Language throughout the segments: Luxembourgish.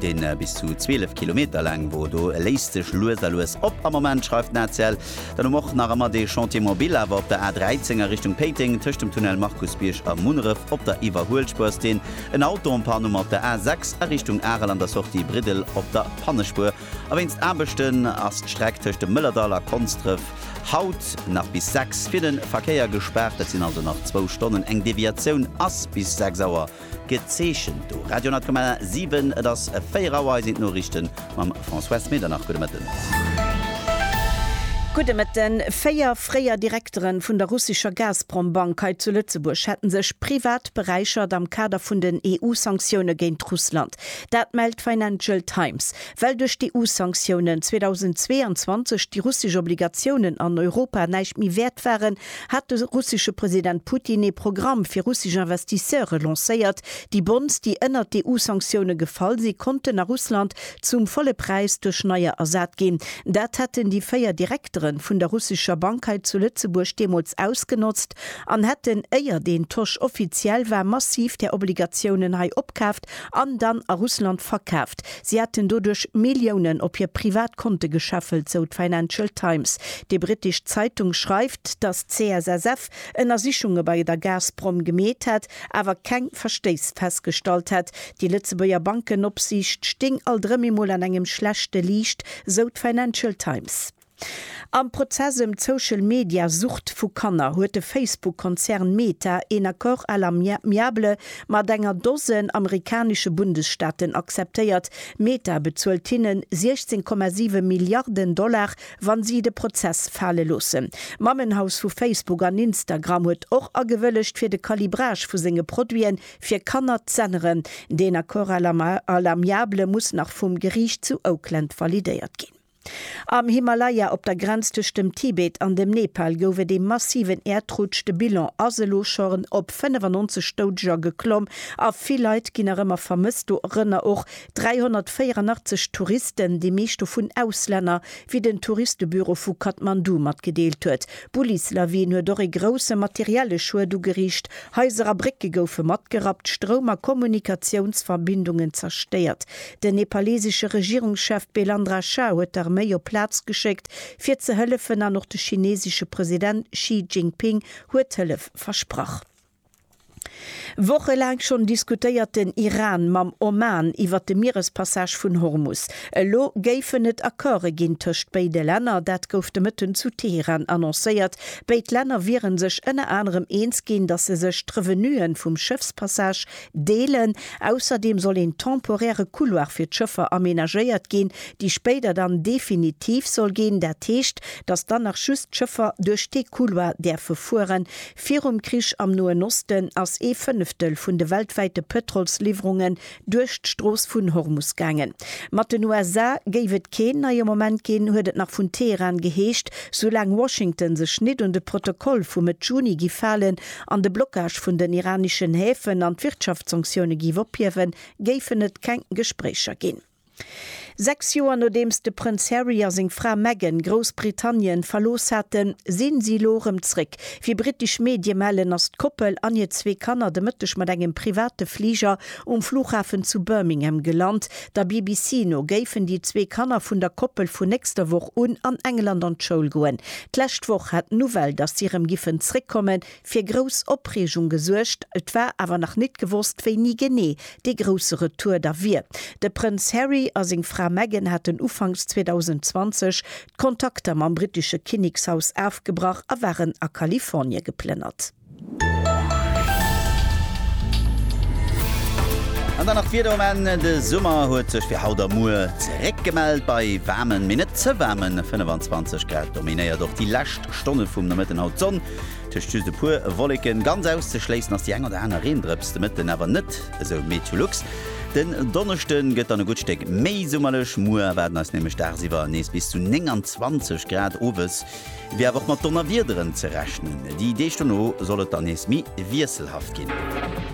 Deen bis zu 12 Kilometer laang wor, do léisst sech lues a lues op am Moment, schreift den ACL. Dann hu mer och nach ëmmer dee Chantier Mobil awer op der A13 a Richtung Péiteng, tëscht dem Tunnel Markusbierg a Munneref op der Iwwerhuelspuer ass deen en Auto en panne, mat der A6 a Richtung Arel an der Sortie Briddel op der Pannespuer a wéinst Aarbechten ass d'Streck tëscht dem Mëllerdall a Konsdref haut nach bis 6 fir de Verkéier gespaart. Dat sinn also nach zwou Stonnen, eng Deviatioun ass bis 6 Auer Gezeechent do Radio 10,7. Et ass 4 Auer. Hei sinn d'Noriichte mam Françoise Medernach. Gudde Mëtten. Gudde Mëtten. Véier fréier Direkteren vun der russescher Gazprom-Bank hei zu Lëtzebuerg hätten sech privat beräichert am Kader vun den EU-Sanktioune géint Russland. Dat mellt d'Financial Times. Well duerch d'EU-Sanktiounen 2022 déi russesch Obligatiounen an Europa näischt méi wäert waren, hat de russesche President Putin ee Programm fir russesch Investisseure lancéiert. Déi Bonds, déi ënnert d'EU-Sanktioune gefall si konnten a Russland zum volle Präis duerch neier ersat ginn. Dat hätten déi véier Direktere vun der russescher Bank hei zu Lëtzebuerg deemools ausgenotzt an hätten, éier deen Tosch offiziell war, massiv där Obligatiounen hei opkaf, verkaaft an dann a Russland verkaaft. Si hätten doduerch Milliounen op hir privat Konte gescheffelt, sou d'Financial Times. Déi brittesch Zeitung schreift, datt d'CSSF Ënnersichunge bei der Gazprom gemeet hätt, awer keng Verstéiss festgestallt hätt. Déi Lëtzebuerger Bankenopsiicht stéing alt erëm emol an engem schlechte Liicht, sou d'Financial Times. Am Prozess ëm d'Social-Media-Sucht vu Kanner huet de Facebook-Konzern Meta een Accord à l'amiable mat enger Dosen amerikanesche Bundesstaaten acceptéiert. Meta bezuelt hinnen 16,7 Milliarden Dollar, wa si de Prozess fale loossen. D'Mammenhaus vu Facebook an Instagram huet och agewëllegt, fir de Calibrage vu senge Produite fir Kanner z'änneren. Deen Accord à l'amiable muss nach vum Geriicht zu Oakland validéiert ginn. Am Himalaya, op der Grenz tëscht dem Tibet an dem Nepal, gouf et ee massiven Äerdrutsch. De Bilan ass elo schon op 95 Doudeger geklomm a vill Leit ginn nach ëmmer vermësst, dorënner och 384 Touristen, déi meescht dovun Auslänner, wéi den Touristebüro vu Kathmandu matgedeelt huet. D'Bullislawin huet och ee grousse materielle Schued ugeriicht, Haiser a Brécke goufe matgerappt, Stroum a Kommunikatiounsverbindungen zerstéiert. Den nepalesesche Regierungschef Belandra Shah huet d'Arméi op d'Plaz geschéckt, fir ze hëllefen an och de chinesesche President Xi Jinping huet Hëllef versprach. Wochelaang schonn diskutéiert den Iran mam Oman iwwert de Mierespassage vun Hormus. Elo géifen et Accorde ginn tëscht béide Länner. Dat gouf de Mëtten zu Teheran annoncéiert. Béid Länner wiere sech ënner anerem eens ginn, datt se sech d'Revenue vum Schëffspassage deelen. Ausserdeem soll een temporäre Couloir fir d'Schëffer amenagéiert ginn, dee spéider dann definitiv soll ginn. Dat heescht, datt dann nach just d'Schëffer duerch dee Couloir däerfe fueren, Virum Krich am Noen Osten ass ee Fënneftel vun de weltwäite Pëtrolsliwwerungen duerch d'Strooss vun Hormus gaangen. Mat den USA géif et keen neie Moment ginn, huet et nach vun Teheran geheescht, soulaang Washington sech nit un de Protokoll vu Mëtt Juni giff halen an de Blockage vun den iraneschen Häfen an d'Wirtschaftssanktioune giff ophiewen, géifen et keng Gespréicher ginn. Sechs Joer nodeems de Prënz Harry a seng Fra Meghan Groussbritannien verlooss haten, sinn si elo erëm zréck. Wéi brittesch Medie mellen, ass d'Koppel an hir zwee Kanner de Mëtteg mat engem private Fliger um Flughafen zu Birmingham gelant. Der BBC no géifen déi zwee Kanner vun der Koppel vun nächster Woch un an England an d'Schoul goen. D'lescht Woch hat d'Nouvelle, datt si erëm giffen zréckkommen, fir grouss Opreegung gesuergt, et war awer nach nit gewosst wéini genee dee grousse Retour da wier. De Prënz Harry a seng Fra Meghan haten ufanks 2020 d'Kontakter mam brittesche Kinnekshaus afgebrach a waren a Kalifornie geplënnert. An dann nach d'Wieder um Enn, De Summer huet sech fir haut a muer zeréck gemellt. Bei waarmen, mee net ze waarmen 25 Grad dominéiert och déi lescht Stonne vum Nomëtten haut d'Sonn. Tëscht just e puer Wolleken. Ganz auszeschléissen ass déi eng oder aner Reendrëps de Mëtten awer net, esou Meteolux. Den Donneschde gëtt dann e gutt Stéck méi summerlech, muer erwaarden eis nämlech dagsiwwer nees bis zu 29 Grad. Owes wier awer och mat Donnerwiederen ze rechnen. Déi Deeg dono soll et dann nees méi wiesselhaft ginn.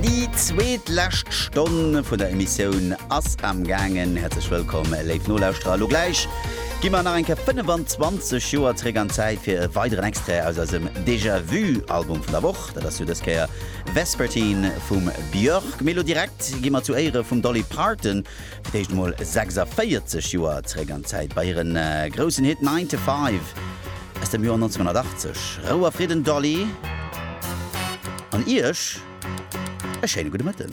Déi zweet lescht Stonn vun der Emissioun ass am gaangen. Häerzlech wëllkomm, léif Nolauschterer. Elo gläich gi mer nach eng Kéier 25 Joer zréck an d'Zäit fir e weideren Extrait aus eisem Déjà Vu Album vun der Woch. Dat ass jo dës Kéier Vespertine vum Björk. Mee elo direkt gi mer zu Éiere vum Dolly Parton Fir d'éischt mol 46 Joer zeréck an d'Zäit, bei hire groussen Hit Nine to Five aus dem Joer 1980. Rou a Fridden, Dolly, an Iech e schéine gudde Mëtten.